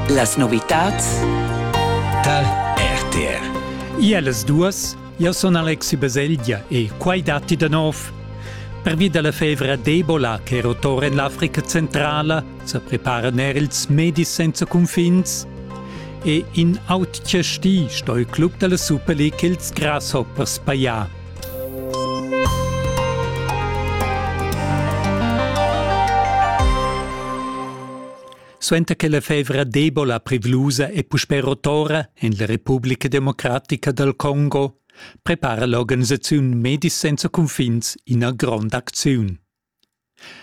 Las novitads tal RTR. Iellas duas, io sun Alexi Baselgia e quai datti da nov. Pervi da la fevra d'Ebola che rotora en l'Africa centrala sa preparan er ils medis senza cunfins. E in autg sti sto il club della Super League ils Grasshoppers paia. Suenter che la fevra d'Ebola privlusa è puspè rotora en la Republica Democratica dal Congo, prepara l'organisaziun Medis senza cunfins ina grond'acziun.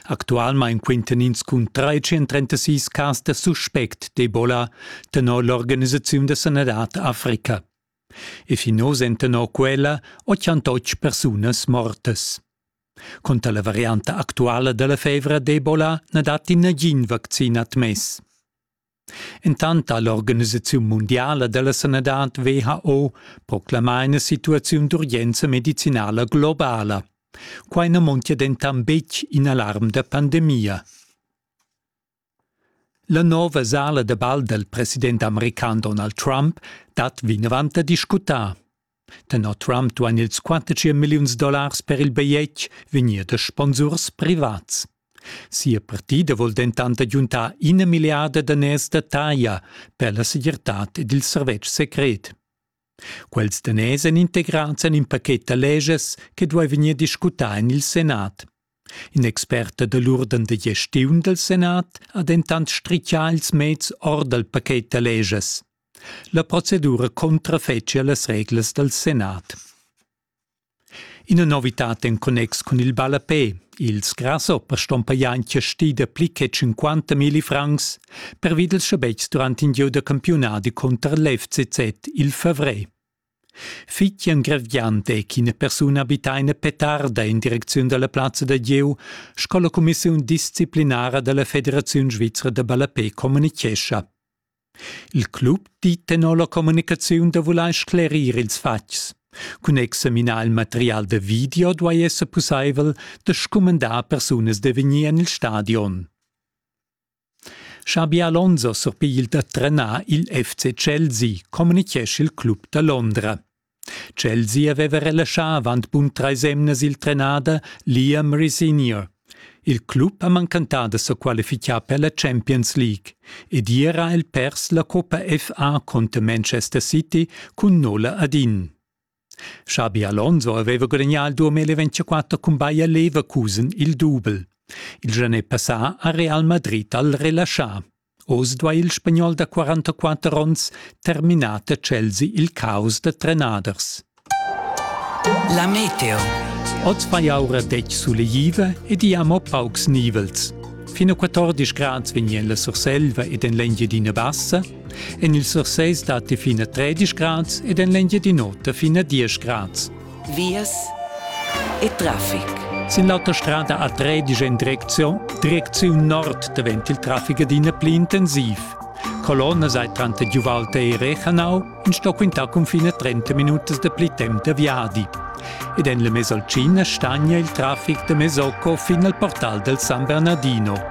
Actualmain quintan ins cun 336 cas da suspect d'Ebola tenor l'organisaziun da sanadad Africa. E fin oz èn tenor quella otschantotg persunas mortas. Cunter la varianta actuala da la fevra d'Ebola na datti nagin vaccin admess. Entant ha l'organisaziun mundiala da la sanadad WHO proclamà ina situaziun d'urgenza medicinala globala. Quai na montia dentant betg in alarm da pandemia. La nova sala da bal dal president american Donald Trump dat vinavant da discutar. Tenor Trump duain ils 45 milliuns dollars per il bigliet vegnir da sponsurs privats. Sia partida vul dentant agiuntar ina milliarda daners da taglia per la segirtad ed il servetsch secret. Quels daners èn integrads en in pachet da leges che duai vegnir discutà en il senat. In expert da l'urden da gestiun dal senat ha dentant stritgà ils meds or dal pachet da leges. La procedura contrafetschia las reglas dal senat. Ina novitad en connex cun il ballapè. Ils grasshoppers ston pajar in chasti da pli che 50 milli francs pervi dals schabetgs durant in gieu da campiunadi cunter l'FCZ il favrer. Fitjan Grevgiant è ch'ina persuna abita ina petarda en direcziun dalla plazza da gieu sco la cumissiun disciplinara dalla Federaziun svizra da ballapè communichescha. Il club di tenor la communicaziun da vulair sclerir ils fatgs. Cun examinar il material da video duai esser pussaivel da scumandar persunas da vegnir en il stadion. Xabi Alonso surpigl da trenar il FC Chelsea, communichescha il club da Londra. Chelsea aveva relaschà avant bun trais emnas il trenader Liam Rosenior. Il club ha mancantà da sa qualificar per la Champions League ed ier ha el pers la Coppa FA contro Manchester City cun Nola Adin. Xabi Alonso aveva gudagnà il 2024 cun Bayer Leverkusen il dubel. Il gianè passà ha Real Madrid al relaschà. Oz duai il spagnol da 44 onns terminar da Chelsea il caos da trenaders. La meteo. Oz vai aura detg suleiva ed i amo paucs nivels. Fin a 14 grads vegnien la Surselva ed en l'Engiadina Bassa, en il Surses datti fin a 13 grads ed en l'Engiadin'Ota fin a 10 grads. vias e traffic. Sin l'auta strada a Tredisch in Direktion, Direktion Nord davent il traffic adina pli intensiv. Colonna sei tranter Giuvalte e Rechanau in sto quintar confine 30 minutas da pli temp da viadi. Ed en le Mesolcina stagna il traffic da Mesocco fin al portal del San Bernardino.